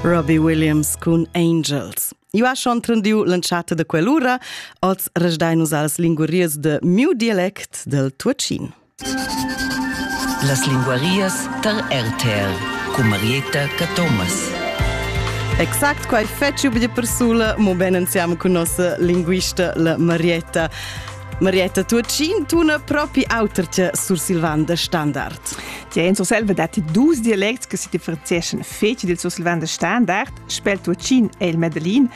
Robbie Williams cun Angels. Eu ha schon trendiu l'entschatta de quell'ura, oz resdai nus als linguarias de miu dialect del Tuatschin. Las linguarias tar RTR cu Marietta Cathomas. Exact quai feci be persula, mo ben insieme con nostra linguista la Marietta. Marietta Tuatschin tuna propi auter che Sur Silvan de Standard. Tgei en Surselva datti dus dialects che si differenzeschan fetg dil sursilvan da standard, spel tuatschin e il medellin.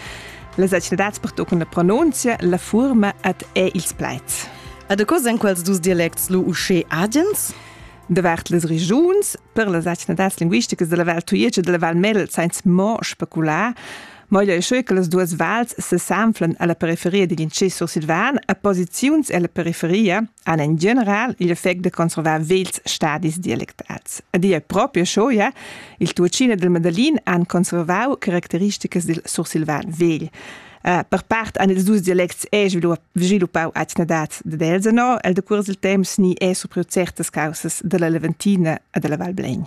Las etnadads pertoccon la pronunzia, la fuorma ed è ils plaids. Ed co san quels dus dialects lu uschè agens? Davart las regiuns, per las etnadads linguisticas della Val Tujetsch e della Val Medel, sainz mo specular, Moglio è che las duas vals sesanflan alla periferia digl intschè sursilvan e posiziuns ella periferia han en general igl effect de conservar vegls stadis dialectats. Ed ia proprio scho, ja, il Tuocina del Medellin han conservau caracteristicas dil sursilvan vegl. Uh, per part han ils dus dialects è sviluppau atgnadads dad Elsenau, el decurs il temps ni è surpriu certas causas della Leventina e della Val Blegn.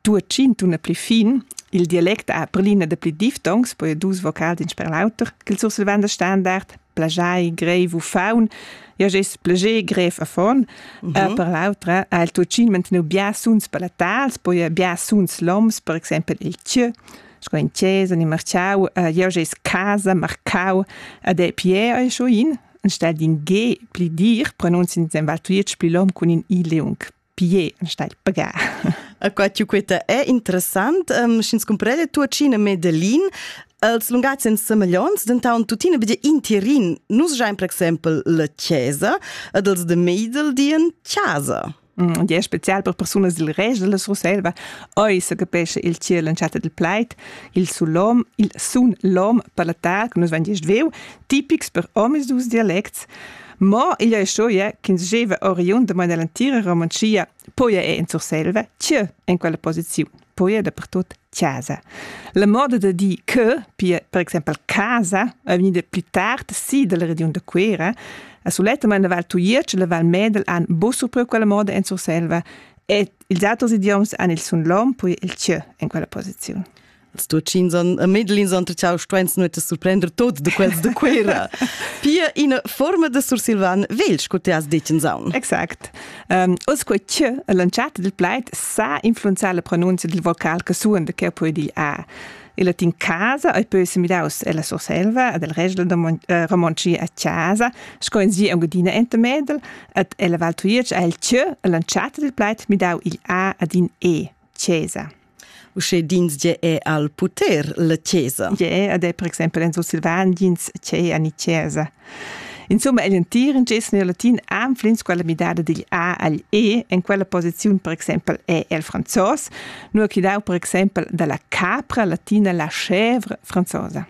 due tschintune pli fin, il dialect ha per l'ina de pli diftongs, poi dus vocals in sper l'auter, che il sursilvanda standard, plagiai, grev u faun, ja gess plagier grev a fon, mm -hmm. uh, per l'autra ha il tuccin mantenu bia suns palatals, poi bia suns loms, per exempel il tjö, sco in chiesa ni marciau, uh, ja gess casa, marcau, ad è pier e scho in, anstelle in G pli dir, pronunzien sen val tuiec pli lom cun in i leung. Pie stai pagar. A qua tiu queta è interessant, um, sch'ins comprende tuacina Medelin, els lungats en semaglions, dentant tuttina vede intirin, nus giain per exempel la chiesa ed els de Meidel dien casa. Mm, e è special per persunas dil rest della Surselva. Oi se capesce il ciel l'entschatta del pleit, il sulom, il sun lom per la tar, che nus van gest veu, tipics per homes dus dialects. Ma igl è storia ch'ins gieva oriund da maina l'entira Romanschia, poia è en Surselva, tge en quella posiziun, poia dappertut chasa. La moda da dir che, pia per exempel casa, è vegnida pli tard si dalla regiun da Cuera, a sulettamain la Val Tujetsch e la Val Medel han buc surpriu quella moda en Surselva e ils auters idioms han il sun lom, poi il tgö en quella posiziun. Ils Tucins e Medellins han tuccau stuens nuot surprender tot de quels de Cuera. Pia ina forma de sursilvan vegl, sco ti has detg in saun. Exact. Um, oz quei che l'entschatta del plaid sa influenzar la pronunzia del vocal che suon de che puoi dir a. Il latin casa ei poi semidaus ella Surselva ed el regla da eh, romontschia a casa, sco in sia Engadina enta Medel, ed ella Val Tujetsch ha il che l'entschatta del plaid midau igl a ad in e, cesa. Usche dins ge è al puter la chesa. Ge è ed è per exempel en Sulsilvan dins che ani chesa. Insomma, egl entir in ges nel latin anflins quella midada digl A agl E en quella posiziun per exempel è el franzos, nur chi dau per exempel dalla capra latina la chèvre franzosa.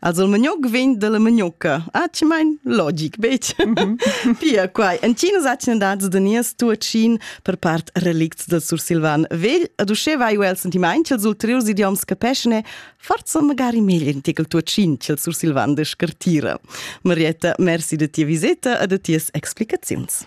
Also il magnuc vegn dalla magnucca. Atgemain logic, betg? Mm -hmm. Pia, quai. Entginas atgnadads da nies tuatschin per part relicts del sursilvan vegl, ad uschè vai el sentimaint ch'els ulteriurs idioms capeschne forza magari meglio in tekel tuatschin ch'el sursilvan de scartira. Marietta, merci de tia viseta e de ties explicaziuns.